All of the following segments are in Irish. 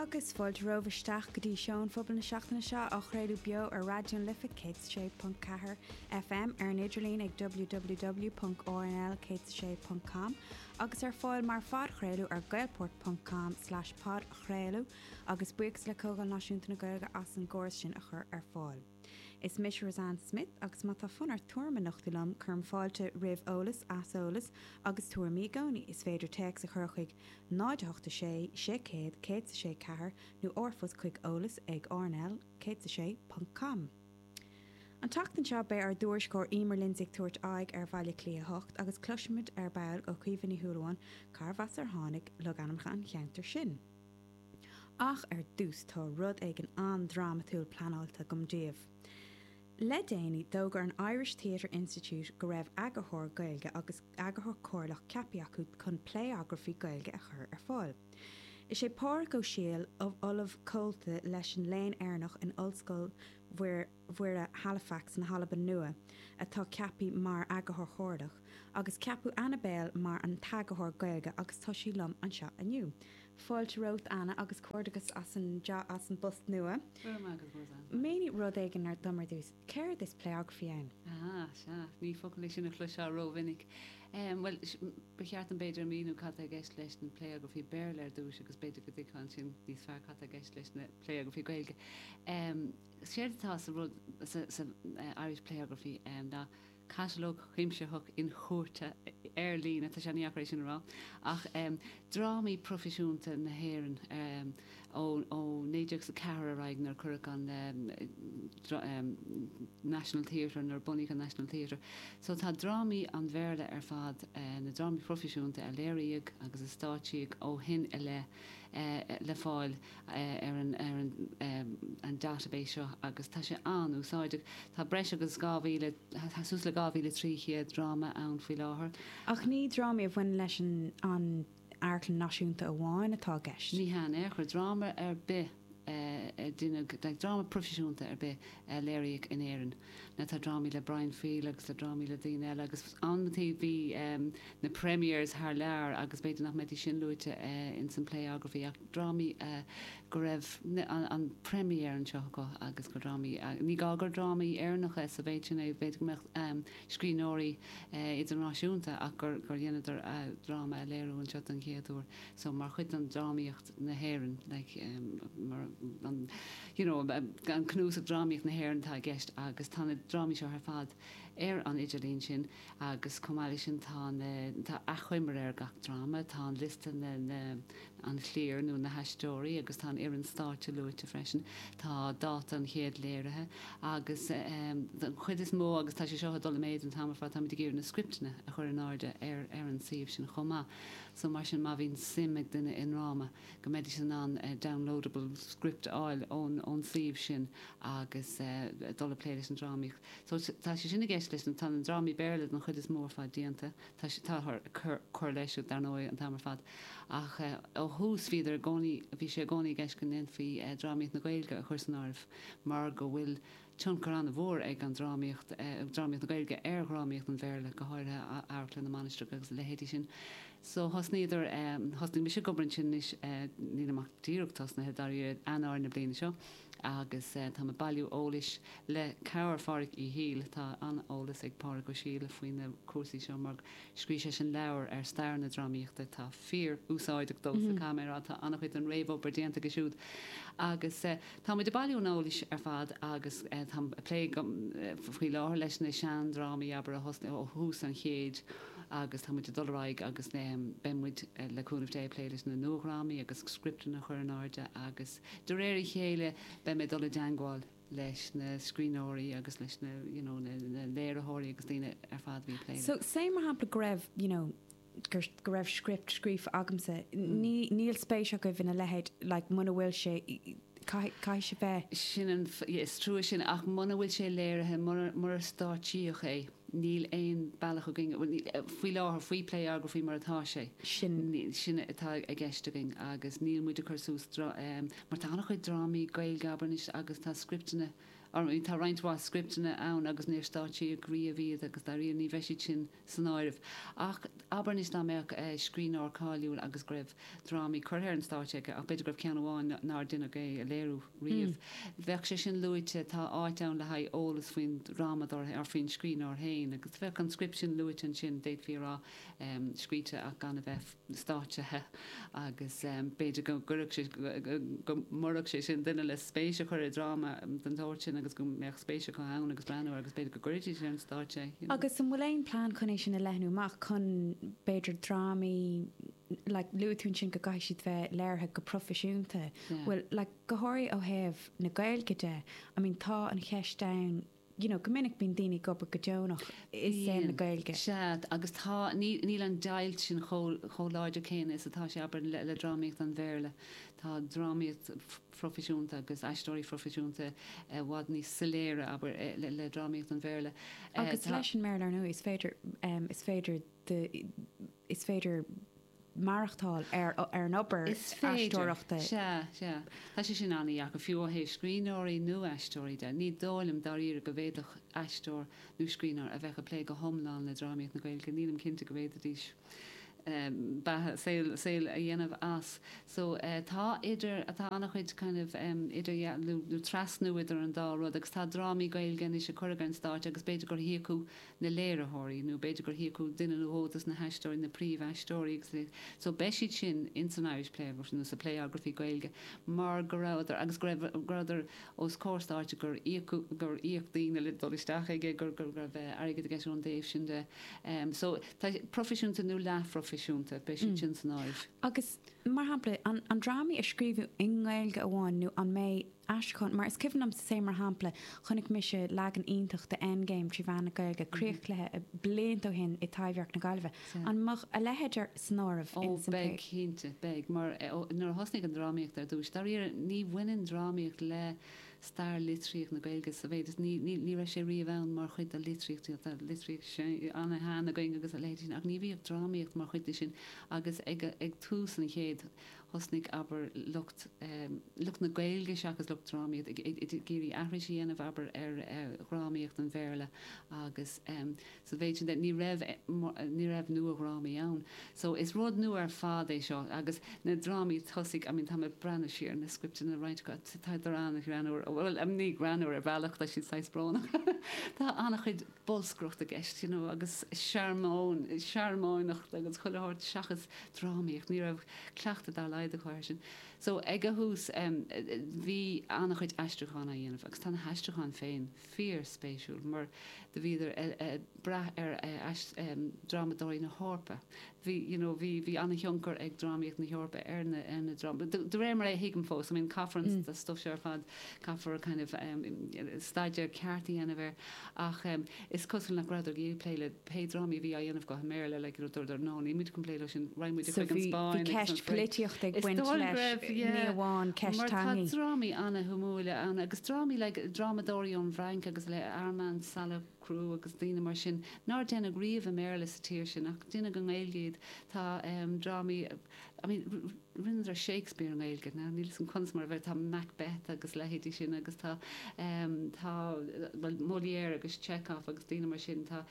Agus fáilte romhaibh isteach go dtí Seó an Phobail na seachtaine seo, á chraoladh beo ar Raidió na Life 106.4 FM, ar an idirlíon ag www.rnl106.com, agus ar fáil mar phodchraoladh ar gaelport.com/podchraoladh, agus buíochas le Comhdháil Náisiúnta na Gaeilge as an gcóras sin a chur ar fáil. Is mise Roseanne Smith agus má tá fonn ort tuairim a nochtadh liom, cuirim fáilte roimh eolas, aiseolas agus tuairimí i gcónaí. Is féidir téacs a chur chuig 0 8 6 6 100 106 4 nó r-phost chuig eolas ag rnl106. com. An tseachtain seo beidh ár dtuairisceoir Eimear Lindsay ag tabhairt aghaidh ar Bhaile Átha Cliath 8 agus cloisfimid ar ball ó Chaoimhe Ní Shúilleabháin cárbh as ar tháinig logainmneacha an cheantair sin. Ach ar dtús tá rud éigin an-drámatúil pleanáilte agam daoibh. Le déanaí, d'fhógair an Irish Theatre Institute go raibh eagarthóir Gaeilge agus eagarthóir comhairleach ceaptha acu chun playography Gaeilge a chur ar fáil. Is é Pádraig Ó Siadhail, Ollamh Comhalta leis an Léann Éireannach in Ollscoil Mhuire, Mhuire, Halifax na hAlban Nua, atá ceaptha mar Eagarthóir Chomhairleach, agus ceapadh Anna Bale mar an t-Eagarthóir Gaeilge agus tá sí liom anseo inniu. Fáilte romhat, Anna, agus comhgairdeachas as an job, as an bpost nua. Go raibh maith agat, Roseanne. Mínigh rud éigin dom ar dtús. Céard is playography ann? Sea, sea. Ní focal é sin a chloisfeá ró-mhinic. Bhuel, ba cheart dom b'fhéidir a mhíniú cad tá i gceist leis na playography Béarla ar dtús agus b'fhéidir go dtuigfeá ansin níos fearr cad tá i gceist leis na playography Gaeilge. Séard atá sa rud, sa Irish Playography, ná catalóg chuimsitheach inchuardaithe ar líne, tá sé an-dheacair é sin a rá, de dhrámaí proifisiúnta na hÉireann ó 1904 ar aghaidh, nuair a cuireadh an National Theatre, nuair a bunaíodh an National Theatre. So tá drámaí an Bhéarla ar fad, na drámaí proifisiúnta a léiríodh agus a stáitsíodh ó shin i leith, le fáil. ar an ar an an database seo agus tá sé an-úsáideach. Tá breis agus 2000 tá suas le 2300 dráma ann faoi láthair. Ach ní drámaí a bhaineann leis an an amharclann náisiúnta amháin atá i gceist. Ní hea in aon chor. Dráma ar bith a deineadh, like dráma proifisiúnta ar bith a léiríodh in Éirinn, Now tá drámaí le Brian Friel agus le drámaí le daoine eile agus uaireanta bhí ehm na premieres thar lear agus b'fhéidir nach mbeidís sin luaite eh in san playography ach drámaí eh go raibh an an premiere anseo acu agus gur drámaí eh ní gá gur drámaí Éireannacha sa mhéid sin eh b'fhéidir go mbeadh ehm scríbhneoirí eh idirnáisiúnta ach gur gur dheineadar eh dráma a léiriú anseo don chéad uair so mar chuid den drámaíocht na hÉireann, like mar an you know an cnuasach drámaíocht na hÉireann atá i gceist agus tá na drámaí seo ar fad ar an idirlíon sin agus chomh maith leis sin tá na tá achoimre ar gach dráma tá an liosta na na an chliar nó na haisteoirí agus tá an fhoireann stáitse luaite freisin tá dáta an chéad léirithe agus um, an chuid is mó agus tá sé seo ag dul i méid an t-am ar fad táimid ag iarraidh na scriptena a chur in airde ar ar an suíomh sin chomh maith So mar sin má bhíonn suim ag duine i ndráma go mbeidís in ann downloadable script a fháil ón ón suíomh sin agus dul ag plé leis an drámaíocht. So tá sé sin i gceist leis na, tá na drámaí Béarla den chuid is mó ar fad déanta, tá sé, táthar ag cur, cur leis siúd dar ndóigh an t-am ar fad ach ó thús bhíodar i gcónaí, bhí sé i gcónaí i gceist go ndéanfaí drámaíocht na Gaeilge a chur san áireamh mar go bhfuil, tionchar an-mhór ag an drámaíocht, drámaíocht na Gaeilge ar dhrámaíocht an Bhéarla, go háirithe Amharclann na Mainistreach agus a leithéidí sin. So thosnaíodar, thosnaigh mise ag obair ansin anois, nílim ach díreach tosnaithe, dáiríre, Eanáir na bliana seo agus táim ag bailiú eolais le cabhair Phádraig Uí Shiadhail, tá an-eolas ag Pádraig Ó Siadhail faoi na cúrsaí seo mar, Scríobh sé an leabhar ar stair na drámaíochta. Tá fíorúsáideach domsa caithfidh mé a rá. Tá an-chuid den réamhobair déanta aige siúd. Agus tá muid ag bailiú an eolais ar fad agus táim ag plé faoi láthair leis na seandrámaí, abair, a thosnaigh ó thús an chéid agus tá muid ag dul ar aghaidh agus beidh muid, le cúnamh Dé, ag plé leis na nuadhrámaí agus scripteanna a chur in airde agus de réir a chéile beidh mé ag dul i dteangmháil leis na scríbhneoirí agus leis na you know na na léiritheoirí agus daoine ar fad a bhí ag plé So let's say mar shampla go raibh you know gur go raibh script scríofa agamsa ní níl spéis agaibh ina leithéid like muna bhfuil sé caithfidh caithfidh sé bheith Sin an yeah is trua sin ach muna bhfuil sé léirithe mura mura stáitsíodh é níl aon bealach againn bhuel ní faoi láthair faoi Playography mar atá sé sin sin atá i gceist againn agus níl muid ag cur suas dra ehm Mar tá an-chuid drámaí Gaeilge abair anois agus tá scripteanna orm, tá roinnt mhaith scripteanna ann agus níor stáitsíodh riamh iad agus dairíre ní bheidh siad sin san áireamh. Ach abair anois dá mbeadh scríbhneoir cáiliúil agus go raibh drámaí curtha ar an stáitse aige, ach b'fhéidir go raibh ceann amháin nár deineadh é a léiriú riamh, bheadh sé sin luaite, tá áit ann le haghaidh eolas faoin drámadóir féin, or faoin scríbhneoir féin, agus bheadh an script sin luaite ansin, d'fhéadfaí a rá, scríofa ach gan a bheith. stáitsithe agus b'fhéidir go gcuirfeadh sé, go mb'fhéidir go gcuirfeadh sé sin duine le spéis a chur i dráma den tsórt sin agus go mbeadh spéis acu ann agus breathnú air agus b'fhéidir go gcuirfidís ar an stáitse é. Agus an bhfuil aon plean chun é sin a leathnú amach, chun b'fhéidir drámaí, like luaigh tú ansin go gcaithfidh siad bheith léirithe go proifisiúnta, bhfuil, like go háirithe ó thaobh na Gaeilge de, I mean tá an cheist ann, you know go minic bíonn daoine ag obair go deonach i saol na Bíonn. Gaeilge. Sea, agus tá, níl, níl an deighilt sin chomh, chomh láidir céanna is atá sé, abair, le, le drámaíocht an Bhéarla. Tá drámaíocht phroifisiúnta agus aisteoirí phroifisiúnta i bhfad níos soiléire, abair, i, le, le drámaíocht an Bhéarla. Eh, Agus tá. leis an mBéarla, ar ndóigh, is féidir, em, is féidir the, is féidir. maireachtáil ar an obair Is féidir. aisteoireachta. Sea, sea. Tá sé sin an-deacair, fiú ó thaobh scríbhneoirí nó aisteoirí de. Ní dóigh liom dáiríre go bhféadfadh aisteoir nó scríbhneoir a bheadh ag plé go hiomlán le drámaíocht na Gaeilge, nílim cinnte go bhféadfaidís beatha, saol, saol a dhéanamh as. So, tá idir, tá an-chuid kind of idirdhealú nó trasnú idir an dá rud agus tá drámaí Gaeilge anois a cuireadh ar an stáitse agus b'fhéidir gur híocadh, na léiritheoirí, nó b'fhéidir gur híocadh duine nó dhó dos na haisteoirí, na príomhaisteoirí agus a So beidh siad sin in san Irish Playography nó sa Playography Gaeilge mar go rabhadar agus go raibh go rabhadar os comhair stáitse gur íocadh gur íoc daoine le dul isteach aige gur go raibh airgead i gceist ón dtaobh sin de. So tá proifisiúnta nó leathphroifisiúnta, beidh siad sin san Irish. Agus, mar shampla, an an drámaí a scríobhadh i nGaeilge amháin nó an mbeidh aistriúchán, mar is cuimhin liomsa sa mar shampla, chonaic mise leagan iontach de Endgame trí mheán na Gaeilge, críochcluiche, blianta ó shin i dTaibhdhearc na Gaillimhe. An mbeadh a leithéid san áireamh Ó, in san beidh, play? cinnte, beidh. Mar, nuair a thosnaigh an drámaíocht ar dtúis, dáiríre, ní bhaineann drámaíocht le stair litríocht na Gaeilge sa mhéid is, ní, ní, ní raibh sé riamh ann mar chuid de litríocht, tá litríocht ana-shean againn agus a leithéid sin ach ní bhíodh drámaíocht mar chuid de sin agus ag, ag tús an chéid, thosnaigh, abair, lucht, lucht na Gaeilge seachas lucht drámaíochta, ag iarraidh aithris a dhéanamh, abair, ar dhrámaíocht an Bhéarla agus sa mhéid sin de, ní raibh, ní raibh nuadhrámaí ann. So, is rud nua ar fad é seo agus na drámaí tosaigh, I mean, tá mé ag breathnú siar ar na scripteanna roinnt acu, tá siad an-ghreannmhar, bhuel, ní greannmhar ar bhealach, tá siad saghas brónach, tá an-chuid, bolscaireacht i gceist you know agus searmóin, searmóineacht agus chuile shórt seachas drámaíocht, ní raibh cleachtadh dá laghad acu ar sin. So ag a thús em bhí an-chuid aistriúchán á dhéanamh agus tá na haistriúcháin féin fíorspéisiúil mar do bhíodar eh eh brath ar eh aist em drámadóirí na hEorpa, bhí you know bhí bhí an-thionchar ag drámaíocht na hEorpa ar na ar na drámaí de de réir mar a thuigim fós I mean caithfear an stuif seo ar fad caithfear kind of em staidéar ceart a dhéanamh air ach em is cosúil nach rabhadar ag iarraidh plé le pé drámaí a bhí á dhéanamh go i mBéarla like you know dúradar no níl muid chun plé leo sin raghaidh muid so chuig an bhí bhí Spáinn agus an ceist Frainc poilitíochta ag is baint dóigh go leis raibh eh, ní yeah amháin ceist mar tá teangaí. drámaí an-shuimiúil ann agus drámaí like drámadóirí ón bhFrainc agus le Armand Sala Cocteau agus daoine mar sin nár deineadh riamh i mBéarla sa tír sin ach deineadh i nGaeilge iad. Tá drámaí, I mean, rinneadar Shakespeare i nGaeilge, now níl 'fhios a'm conas mar a bheidh, tá Macbeth agus leithéidí sin agus tá, em, tá, bhuel, Molière agus Chekhov agus daoine mar sin, tá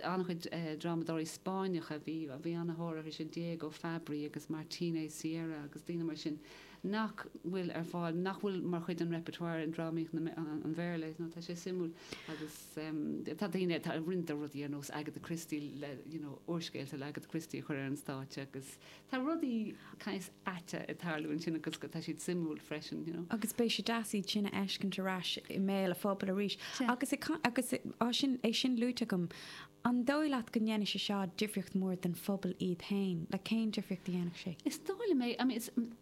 an-chuid drámadóirí Spáinneacha, bhí, bhí an-thóir orthu sin, Diego Fabbri agus Martínez Sierra agus daoine mar sin. nach bhfuil ar fáil, nach bhfuil mar chuid den repertoire in drámaíocht an Bhéarla. Tá sé suimiúil agus tá daoine, tá roinnt de rudaí ar nós Agatha Christie le, you know, úrscéalta le Agatha Christie a chur ar an stáitse agus tá rudaí saghas aite ag tarlú ansin agus tá siad suimiúil freisin, you know. Agus beidh sé deas iad sin a fheiscint ar ais i mbéal a' phobail arís. Agus, agus é sin, é sin luaite agam, An dóigh leat go ndéanfaidh sé seo difríocht mór don phobal iad féin, nó cén difríocht a dhéanfadh sé? Is dóigh liom é. I mean,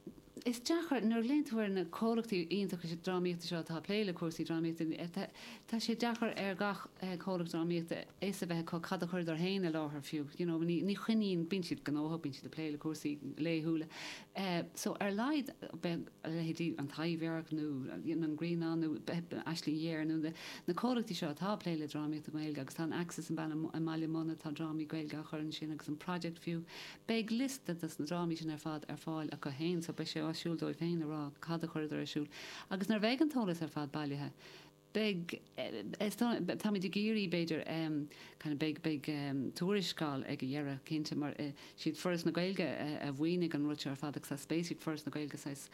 is deacair, nuair a fhéachann tú ar na comhlachtaí iontacha drámaíochta seo atá ag plé le cúrsaí drámaíochta, tá sé deacair ar gach comhlacht drámaíochta fhios a bheith acu cad a chuireadar féin i láthair fiú, you know, ní choinníonn, bíonn siad gnóthach, bíonn siad ag plé le cúrsaí laethúla, so ar a laghad beidh. a leithéidí an Taibhdhearc nó An Ghrianán nó Aisling Ghéar nó na comhlachtaí seo atá ag plé le drámaíocht i nGaeilge agus tá an Axis i mBaile Munna, tá drámaí Gaeilge á gcur ansin agus an Project fiú, beidh liosta dos na drámaí sin ar fad ar fáil acu féin so beidh sé áisiúil dóibh féin a rá cad a chuireadar ar siúl agus nuair a bheidh an t-eolas ar fad bailithe beidh, táimid ag iarraidh, b'fhéidir, kind of beidh, beidh tuarascáil ag a dheireadh, cinnte, mar is iad Foras na Gaeilge a mhaoinigh an rud seo ar fad agus saghas ba mhaith le Foras na Gaeilge saghas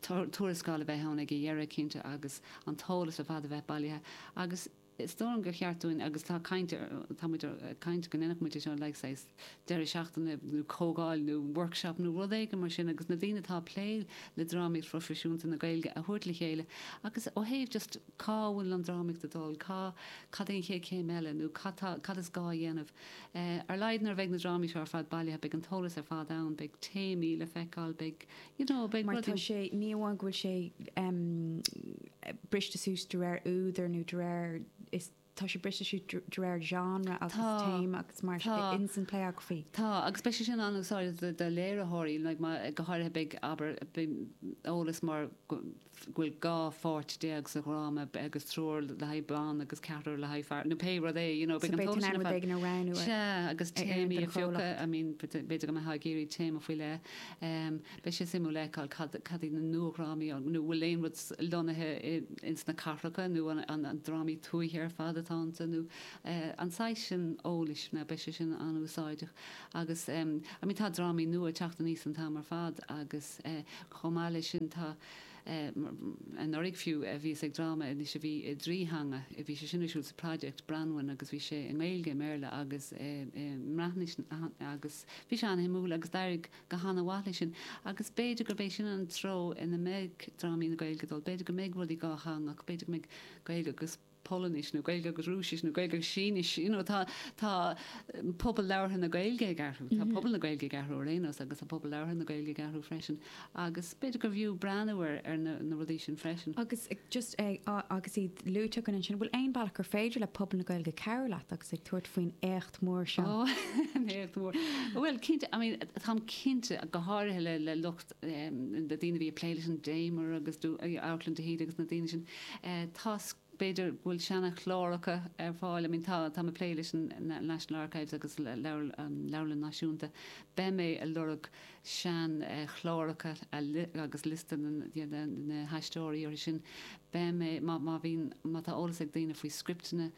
tuarascáil a bheith ann ag a dheireadh, cinnte, agus an t-eolas ar fad a bheith bailithe agus is dóigh liom gur cheart dúinn agus tá caint, táimid ag caint go ndéanfadh muid é seo like saghas. deireadh seachtaine nó comhdháil nó workshop nó rud éigin mar sin agus na daoine atá ag plé le drámaíocht phroifisiúnta na Gaeilge a thabhairt le chéile agus ó thaobh just cá bhfuil an drámaíocht ag dul, cá, cad é an chéad chéim eile nó cad tá, cad is gá a dhéanamh. Ar a laghad nuair a bheidh na drámaí seo ar fad bailithe beidh an t-eolas ar fad ann, beidh téamaí le feiceáil, beidh you know, beidh rudaí. Tá sé, ní amháin go bhfuil sé em briste suas de réir údar nó de réir, is. Tá sé briste suas de réir genre agus téama agus mar sin de ins an playography. Tá, agus beidh sé sin an-úsáideach do léiritheoirí, go háirithe beidh, abair, eolas mar go bhfuil 12 pháirt sa dhráma agus triúr le haghaidh ban agus ceathrar le haghaidh fear nó pé rud é, you know, beidh an t-eolas sin ar fad. So beidh tú in ann rud éigin a roghnú ar fad. Sea, agus téamaí a phiocadh, I mean, b'fhéidir go mbeifeá ag iarraidh téama faoi leith. Beidh sé suimiúil a fheiceáil cad iad na nua-dhrámaí, an bhfuil aon rud lonnaithe ins na cathracha nó an drámaí tuaithe ar fad atá iontu nó an saghas sin eolais, mar beidh sé sin an-úsáideach. Agus I mean tá drámaí nua ag teacht aníos an t-am ar fad agus chomh maith leis sin tá anuraidh fiú bhíos ag dráma anois a bhí i dtrí theanga, bhí sé sin ar siúl sa Project, Branwen, agus bhí sé i nGaeilge, i mBéarla agus i mBreatnais agus bhí sé an-shuimiúil agus d'éirigh. go han-mhaith leis sin agus b'fhéidir gurb é sin an treo ina mbeidh drámaí na Gaeilge ag dul. B'fhéidir go mbeidh rudaí dhátheangach, b'fhéidir go mbeidh Gaeilge agus Polainnis nó Gaeilge agus Rúisis nó Gaeilge agus Sínis, you know. Tá, tá pobal labhartha na Gaeilge ag athrú, tá pobal na Gaeilge ag athrú ar aon nós agus tá pobal labhartha na Gaeilge ag athrú freisin agus b'fhéidir gurbh fhiú breathnú ar, ar na, na rudaí sin freisin. Agus just eh, agus iad luaite againn ansin, bhfuil aon bealach gur féidir le pobal na Gaeilge cabhrú leat agus tú ag tabhairt faoin mór seo. Oh, éacht mór. Bhuel, cinnte, I mean, táim cinnte, go háirithe le, le lucht, um, na daoine bhí ag plé leis an Damer agus, uh, Amharclann de hÍde agus na daoine sin, uh, tá b'fhéidir bhfuil seana-chláracha ar fáil, I mean, tá, táim ag plé leis an National Archives agus le, leabhar, an Leabharlann Náisiúnta, beidh mé ag lorg sean, uh, chláracha agus liosta na, you know, na, na haisteoirí orthu sin. Beidh mé, má, má bhíonn, má tá eolas ag daoine faoi scripteanna,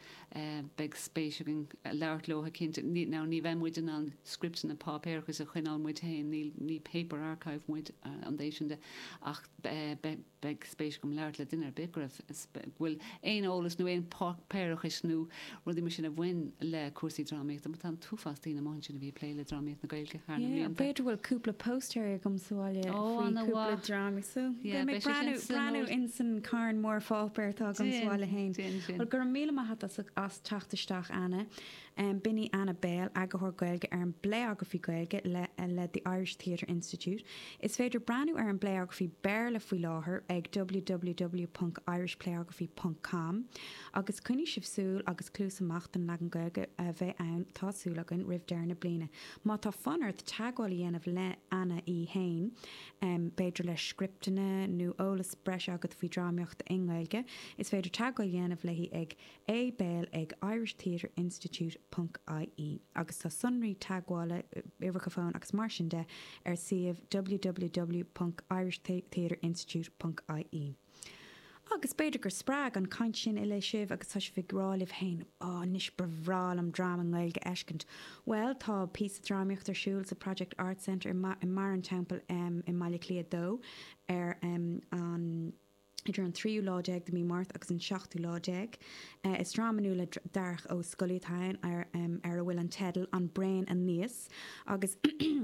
Beidh spéis againn labhairt leo cinnte. Now ní bheidh muid in ann scripteanna páipéarachais a choinneáil muid féin, níl, ní paper archive muid, ón dtaobh sin de, ach beidh spéis agam labhairt le duine ar bith go raibh, bhfuil aon eolas nó aon páipéarachais nó rudaí mar sin a bhain le cúrsaí drámaíochta, mar tá an t-uafás daoine amuigh ansin a bhí ag plé le drámaíocht na Gaeilge thar na mblianta. B'fhéidir bhfuil cúpla póstaer agam sa bhaile faoi cúpla dráma. So, beidh mé ag breathnú ins an carn mór páipéar atá agam sa bhaile fhéin. Bhuel, go raibh míle maith a't as teacht isteach, Anna. B'in í Anna Bale, Eagarthóir Gaeilge ar an bPlayography Gaeilge le The Irish Theatre Institute. Is féidir breathnú ar an bPlayography Béarla faoi láthair ag www.irishplayography.com. Agus coinnigí súil agus cluas amach don leagan Gaeilge a bheidh ann, tá súil againn, roimh deireadh na bliana. Má tá fonn ort teagmháil a dhéanamh le Anna í fhéin, b'fhéidir le scripteanna nó eolas breise agat faoi drámaíocht i nGaeilge, is féidir teagmháil a dhéanamh léi ag A Bale ag irishtheatreinstitute ponc ie agus tá sonraí teagmhála, uimhreacha fóin agus mar sin de ar suíomh www ponc irishtheatreinstitute ponc ie. Agus b'fhéidir gur spreag an chaint sin uilig sibh agus tá sibh ag rá libh féin, Á, anois ba bhreá liom dráma i nGaeilge a fheiscint. Bhuel, tá píosa drámaíochta ar siúl sa Project Arts Centre i mBarr an Teampaill i mBaile Cliath 2 ar an, idir an tríú lá déag de Mí Márta agus an seachtú lá déag. Is dráma nua le Darach Ó Scolaí atá ann ar a bhfuil an teideal An Braon Aníos. Agus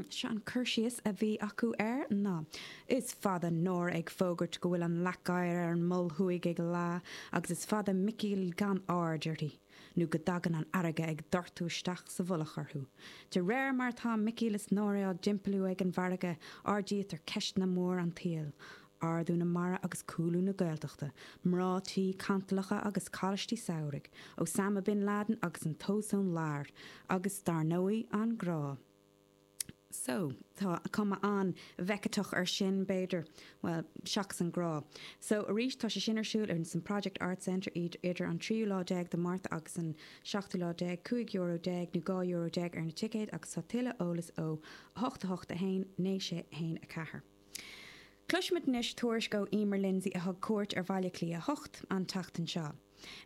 seo an cur síos a bhí acu air ná, Is fada Nóra ag fógairt go bhfuil an leac oighir ar an Mol Thuaidh ag leá, agus is fada Micí gan aird uirthi, nó go dtagann an fharraige ag doirteadh isteach sa mhullach orthu. De réir mar atá Micí is Nóra á dtimpeallú ag an bhfarraige, ardaítear ceisteanna mór an tsaoil, Ardú na mara agus cúlú na Gaeltachta, mná tí cantalacha agus coláistí samhraidh, Osama Bin Laden agus an t-ozone layer, agus dar ndóigh, an grá. So, tá cuma an-Bheckettach ar sin, b'fhéidir. Bhuel, seachas an grá. So, arís, tá sé sin ar siúl in san Project Arts Centre idir an tríú lá déag de Mhárta agus an seachtú lá déag, cúig euro déag nó dhá euro déag ar na ticéid agus tá tuilleadh eolas ó, 8 8 1 9 6 1 4. Cloisfimid anois tuairisc ó Emer Lindsay a thug cuairt ar Bhaile Átha Cliath 8 an tseachtain seo.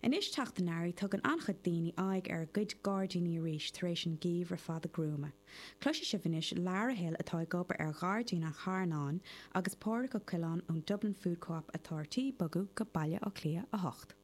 Anois teacht an earraigh tugann an-chuid daoine aghaidh ar a gcuid gairdíní arís tar éis an geimhreadh fada gruama. Cloisfidh sibh anois Lara Hill atá ag obair ar Ghairdín an Charnáin agus Pádraic Ó Coileáin ón Dublin Food Co-Op atá ar tí bogadh go Baile Átha Cliath 8.